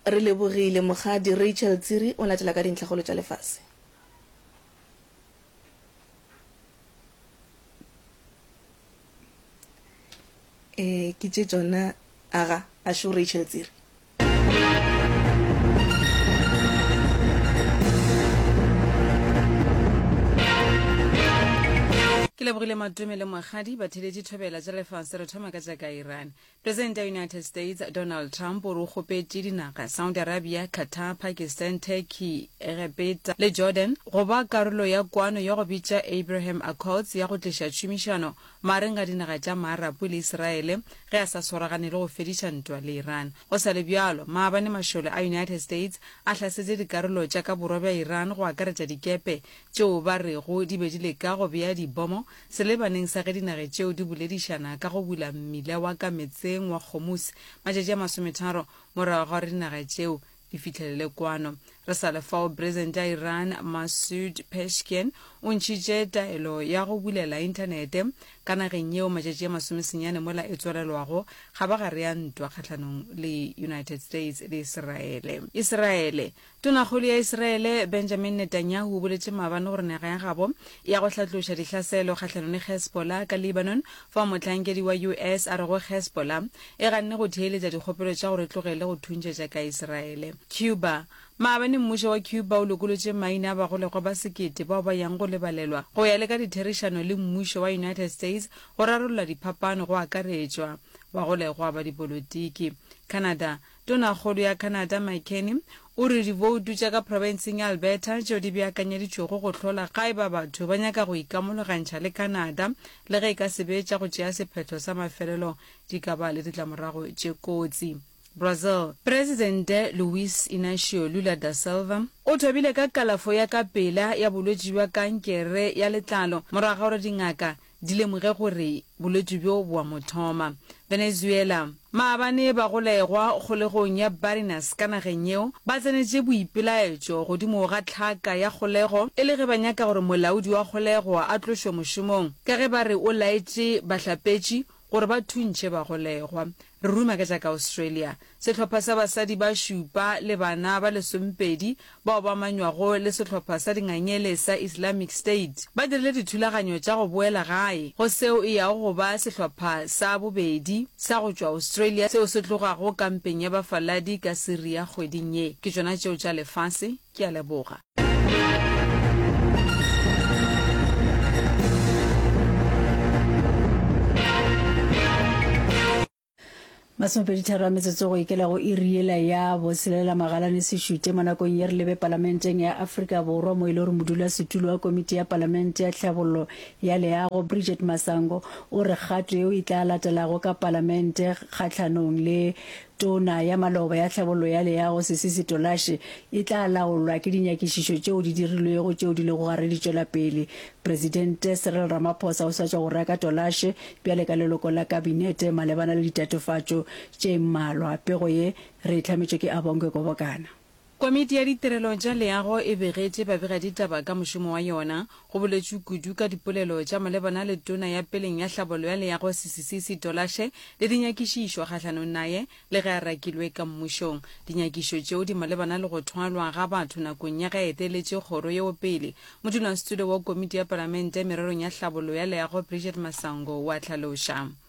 Re lebogile, Mokgadi Rachel Tsiri o latela ka dintlhakgolo tša lefase. Ee, ke tše tšona, aga, a šo Rachel Tsiri. Ke lebogile Madume le Mokgadi, batheeletši thobela tša lefase. Re thoma ka tša ka Iran. Presidente ya United States Donald Trump o re o kgopetše dinaga Saudi Arabia, Qatar, Pakistan, Turkey, Egepeta le Jordan go ba karolo ya kwano ya go bitša Abraham Accords ya go tliša tšhomišano magareng ga dinaga tša Maarapu le Iseraele ge a sa swaragane le go fediša ntwa le Iran. Go sa le bjalo, maabane mašole a United States a hlasetše dikarolo tša ka borwa bja Iran go akaretša dikepe tšeo ba rego di be di leka go bea dibomo Selebaneng sa ge dinage tšeo di boledišana ka go bula mmila wa ka metseng wa Kgomusi matšatši a masometharo morago ga gore dinage tšeo di fihlelele kwano. Re sa le fao, Presidente ya Iran Masoud Pezeshkian o ntšhitše taelo ya go bulela inthanete ka nageng yeo matšatši a masomesenyane mola e tswalelwago kgabagare ya ntwa kgahlanong le United States le Iseraele. Iseraele, Tonakgolo ya Israele Benjamin Netanyahu o boletše maabane gore naga ya gabo e ya go hlatloša dihlaselo kgahlanong le Hezbollah ka Lebanon fao mohlankedi wa US a rego Hezbollah e ganne go theeletša dikgopelo tša gore e tlogele go thuntšetša ka Israele. Cuba Maabane mmušo wa Cuba o lokolotše maina a bagolegwa ba sekete bao ba yang go lebalelwa go ya le ka ditherišano le mmušo wa United States go rarolla diphapano go akaretšwa bagolegwa ba dipolotiki. Canada. Tonakgolo ya Canada Mike Carney o re diboutu tša ka profenseng ya Alberta tšeo di beakanyeditšwego go hlola ga e ba batho ba nyaka go ikamologantšha le Canada le ge e ka se be tša go tšea sephetho sa mafelelo di ka ba le ditlamorago tše kotsi. Brazil. Presidente Luiz Inacio Lula da Silva o thobile ka kalafo ya ka pela ya bolwetši bja kankere ya letlalo morago ga gore dingaka di lemoge gore bolwetši bjo bo a mo thoma. Venezuela. Maabane bagolegwa kgolegong ya Barinas ka nageng yeo ba tsenetše boipelaetšo godimo ga tlhaka ya kgolego e le ge ba nyaka gore molaodi wa kgolego a tlošwe mošomong ka ge ba re o laetše bahlapetši gore ba thuntšhe bagolegwa. Re ruma ka tša ka Australia. Sehlopha sa basadi ba šupa le bana ba lesomepedi bao ba amanywago le sehlopha sa dingangele sa Islamic State ba dirile dithulaganyo tša go boela gae go seo e yago go ba sehlopha sa bobedi sa go tšwa Australia seo se tlogago kampeng ya bafaladi ka Syria kgweding ye. Ke tšona tšeo tša lefase. Ke a leboga. masomepeditharo a metsotso go ikela go iriela ya boselela magalane sešute mo nakong ye re lebe palamenteng ya aforika borwa mo e le gore modulasetulo wa komiti ya palamente ya tlhabollo ya leago bridget masango o re kgato yeo e tla latelago ka palamente kgatlhanong le Tona ya Maloba ya Tlhabollo ya Leago Sisi Sitolashe e tla laolwa ke dinyakišišo tšeo di dirilwego tšeo di lego gare di tšwela pele. Presidente Cyril Ramaphosa o swatša go reka Tolashe bjale ka leloko la Kabinete malebana le ditatofatšo tše mmalwa. Pego ye re e hlametšwe ke Abongwe Kobokana. Komiti ya Ditirelo tša Leago e begetše babegaditaba ka mošomo wa yona. Go boletšwe kudu ka dipolelo tša malebana le tona ya peleng ya hlabollo ya leago Sisisi Sitolashe le dinyakišišo kgahlanong naye le ge a rakilwe ka mmušong. Dinyakišo tšeo di malebana le go thwalwa ga batho nakong ya ge a eteletše kgoro yeo pele. Modulasetulo wa Komiti ya Palamente mererong ya Hlabollo ya Leago Bridget Masango o a hlaloša.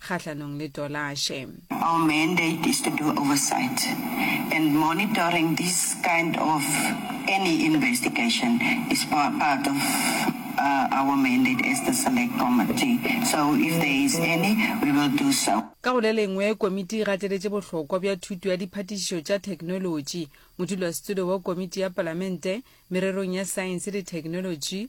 kgahlanong le Tolashe. Our mandate is to do oversight and monitoring this kind of any investigation is part of our mandate as the Select Committee so if there is any we will do so. Ka go le lengwe, komiti e gateletše bohlokwa bja thuto ya diphatišišo tša theknolotši. Modulasetilo wa Komiti ya Palamente mererong ya Saense le Theknolotši,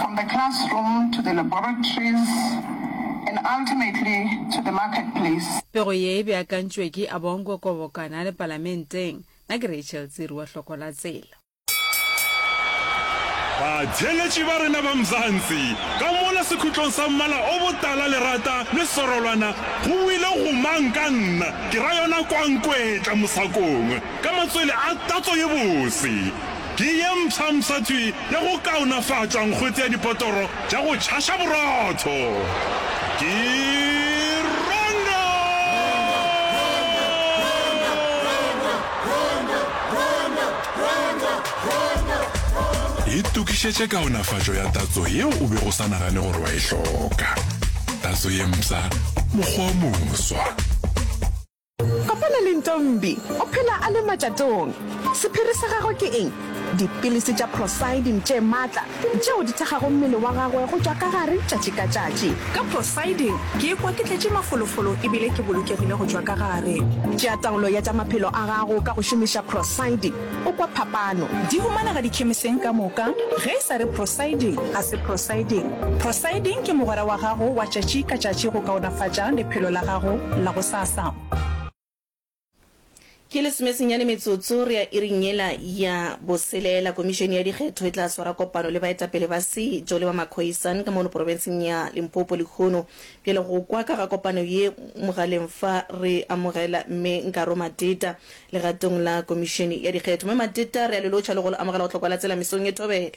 From the classroom to the laboratories and ultimately to the market place. Pego ye e beakantšwe ke Abongo Kobokana le Palamenteng. Na ke Rachel Tsiru wa Hloko la Tsela. Batheeletši ba rena ba Mzansi, ka mola sekhutlong sa mmala o botala lerata le sorolwana, go buile go mang ka nna, ke ra yona Kwankwetla Mosakong, ka matswele a tatso ye bose. ke ye mpshampsha tswi ya go kaonafatšwa nkgwete ya dipotoro tša go tšhaša borotho. Ke Rondo! Itokišetše kaonafatšo ya tatso yeo o bego o sa nagane gore wa e hloka. Tatso ye mpsha, mokgwa o moswa. Kopana le Ntombi, o phela a le matšatong. Sephiri sa gagwe ke eng? Dipilisi tša prosidin tše matla tšeo di thekgago mmele wa gagwe go tšwa ka gare tšatši ka tšatši. Ka prosidin ke ikwa ke tletše mafolofolo ebile ke bolokegile go tšwa ka gare. Tšea taolo ya tša maphelo a gago ka go šomiša prosidin. O kwa phapano? Di humanega dikhemiseng ka moka, ge e sa re Procyldin, ga se Procyldin. Procyldin ke mogwera wa gago wa tšatši ka tšatši go kaonafatša lephelo la gago la gosasa. Ke lesomesenyane metsotso re ya iring yela ya boselela. Komišene ya dikgetho e tla swara kopano le baetapele ba setšo le ba makhoisan ka mono porofenseng ya Limpopo lehono. Bjale go kwa ka ga kopano ye mogaleng fa re amogela Mme Nkaro Mateta, Legatong la Komišene ya Dikgetho, Mme Mateta re a le lotšha le go le amogela go hlokwa la tsela mesong ye thobela.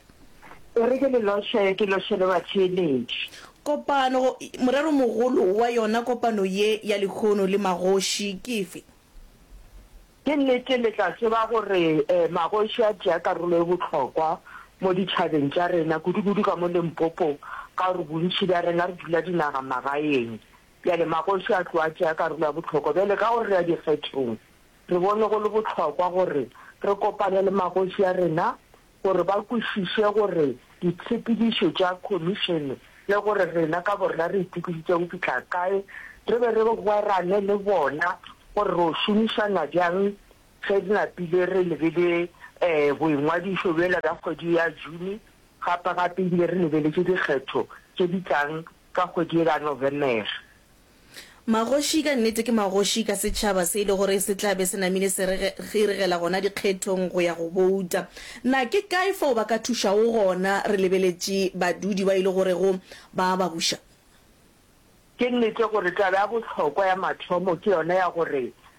O re ke le lotšhe, ke lotšhe le batheeletši. Kopano go, morero mogolo wa yona kopano ye ya lehono le magoši ke efe? Ke nnete le tla tseba gore magoši a tšea karolo e bohlokwa mo ditšhabeng tša rena, kudu-kudu ka mo Limpopo ka gore bontši bja rena re dula dinagamagaeng Bjale magoši a tloga a tšea karolo ya bohlokwa. Bjale ka gore re ya dikgethong, re bone go le bohlokwa gore re kopane le magoši a rena gore ba kwešiše gore ditshepedišo tša khomišene le gore rena ka borena re itokišitše go fihla kae, re be re rerane le bona gore re o šomišana bjang ge re napile re lebele boingwadišo bjela bja kgwedi ya June gape-gape ebile re lebeletše dikgetho tše di tlang ka kgwedi yela Novemer. Magoši ka nnete ke magoši ka setšhaba se e le gore se tla be se namile se iregela gona dikgethong go ya go bouta. Na ke kae fao ba ka thušago gona re lebeletše badudi ba e le gorego ba a ba buša? Ke nnete gore taba ya bohlokwa ya mathomo ke yona ya gore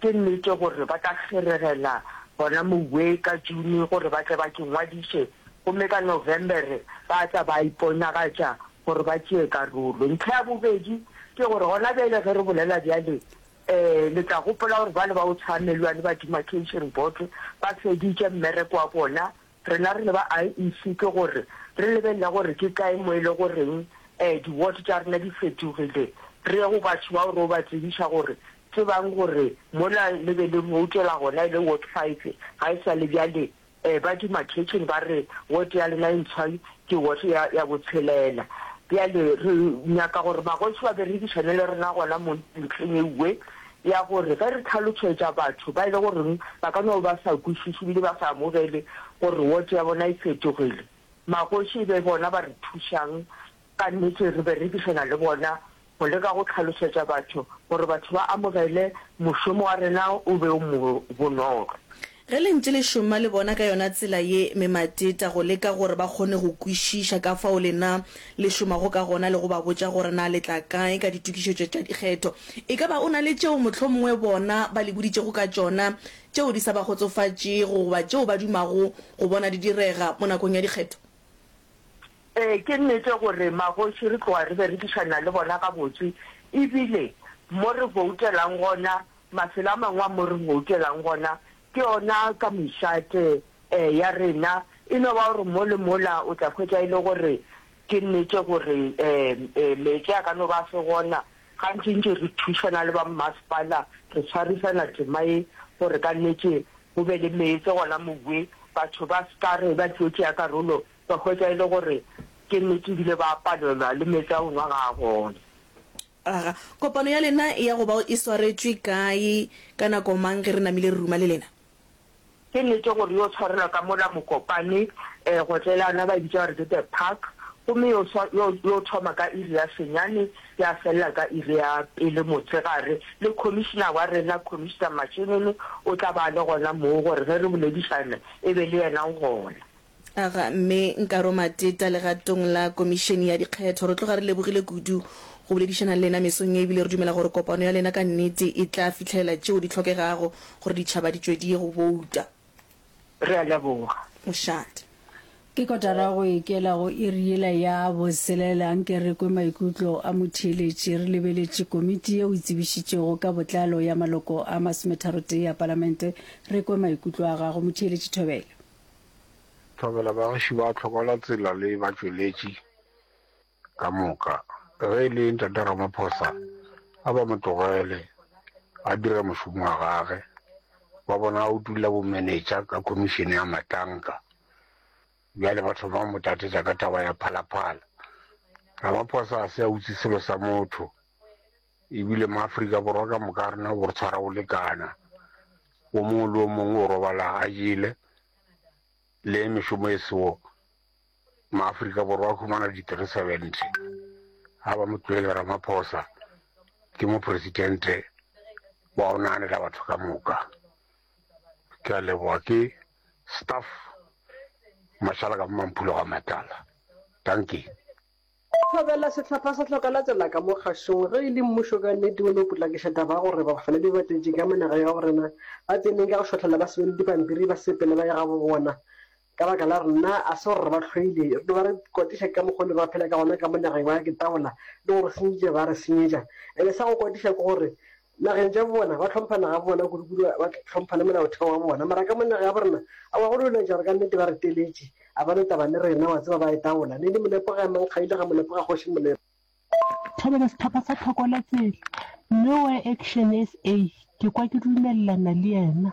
Ke nnete gore ba tla kgeregela gona mowee ka June gore ba tle ba ke ngwadiše, gomme ka November ba tla ba iponagatša gore ba tšee karolo. Ntlha ya bobedi ke gore gona bjale ge re bolela bjale, ee, le tla gopola gore bale ba go tshwaya melu a le ba Demarcation Board ba feditše mmereko wa bona Rena re le ba IEC ke gore re lebelela gore ke kae mo e le goreng um di-ward tša rena di fetogile, re ye go batho bao re yo ba tsebiša gore tsebang gore mola le be le voutela gona e le ward five ga e sa le bjale um ba demarcation ba re ward ya lena e ntshwa ke ward ya ya botshelela. Bjale re nyaka gore magoši ba berekišane le rena gona mo ntlheng ewe ya gore ge re tlhalošetša batho ba e le goreng ba ka no ba sa kwešiše ebile ba sa amogele gore wot ya bona e fetogile, magoši e be bona ba re thušang, ka nnete re berekišana le bona go leka go tlhalošetša batho gore batho ba amogele mošomo wa rena o be o mo bonolo. Ge le ntše le šoma le bona ka yona tsela ye memateta go leka gore ba kgone go kwešiša ka fao lena le šomago ka gona le go ba botša gore na le tla kae ka ditokišetšo tša dikgetho, e ka ba o na le tšeo mohlomongwe bona ba le boditšego ka tšona tšeo di sa ba kgotsofatšego goba tšeo ba dumago go bona di direga mo nakong ya dikgetho. Ee, ke nnete gore magoši re tloga re berekišana le bona gabotse e bile mo re boutelang gona Mafelo a mangwe a mo re goukelang gona ke ona ka mešate ee ya rena. E no ba gore mo le mola o tla hwetša e le gore ke nnete gore ee meetse a ka no ba a se gona. Gantšintši re thušana le ba mmasepala, re swarisana tema ye gore ka nnete go be le meetse gona mowe, batho ba se ka re ba tlo tšea karolo ba hwetša e le gore ke nnete ebile ba palelwa le meetse a go nwa ga a gona. Aga, kopano ya lena e ya go bao e swaretšwe kae, ka nako mang ge re namile re ruma le lena? Ke nnete gore yo tshwarelwa ka mola Mokopane Gotlelana ba e bitša gore ke The Park, gomme yo swa, yo, yo thoma ka iri ya senyane ya felela ka iri ya pele motshegare, le Commissioner wa rena, Commissioner Mashinini, o tla ba a le gona moo gore ge re boledišana e be le yena o gona. A ga Mme Nkaro Mateta legatong la Komišene ya Dikgetho. Re tloga re lebogile kudu go boledišana le lena mesong ye ebile re dumela gore kopano ya lena ka nnete e tla fihlelela tšeo di hlokegago gore ditšhaba di tšwediye go bouta. Re a leboga. Mošate. Ke kotara go ikela go iri yela ya boselela anke re kwe maikutlo a motheeletši. Re lebeletše komiti yeo e tsebišitšego ka botlalo ya maloko a masometharotee a Palamente. Re kwe maikutlo a gago, Motheeletši Thobela. Thobela, Bagiši ba tlhoka la tsela le batšweletši ka moka. Ge e le Ntate Ramaphosa, a ba mo tlogele a dire mošomo wa gage. Ba bona a utolla bomenetša ka khomišene ya matlanka, bjale ba thoma go mo tatetša ka taba ya Phalaphala. Ramaphosa a se a utse selo sa motho. E bile maAfrika Borwa ka moka a rena bo re tshwara go lekana, o mongwe le o mongwe o robala a jele, le ge mešomo e sewo maAfrika Borwa a humana di three seventy. Ga ba mo tlohele Ramaphosa ke mopresidente wa go naganela batho ka moka. Ke a leboga ke staff Mashala ka mo Mamphulo ga Matala. Dankie. Thobela sehlopha sa Hloka Latela ka mo Kgašong ge e le mmušo ka nnete o no potlakiša taba ya gore bafaledi ba batetši ka mo naga ya go rena ba tseneng ka go šotlhela ba sebele dipampiri ba sepele ba ye gabo bona ka baka la rena a se gore re ba hloile re no ba re kwatiša ka mokgo ne ba phela ka gona ka mo nageng ba ke tabola le go re senyetša ba re senyetša ebe sa go kwatiša ke gore Nageng tša bona ba hlompha naga bona kudukudu ba hlompha le molaotheo wa bona mara ka mo naga ya borena awa go lwelwetša gore ka nnete ba re teletše a ba no taba le rena wa tseba ba e tawola ne di molepo ga emang kga ile ga molepo ga kgoši molepo. Thobela sehlopha sa thoko la tsela, Nowhere Action SA, ke kwa ke dumelelana le yena.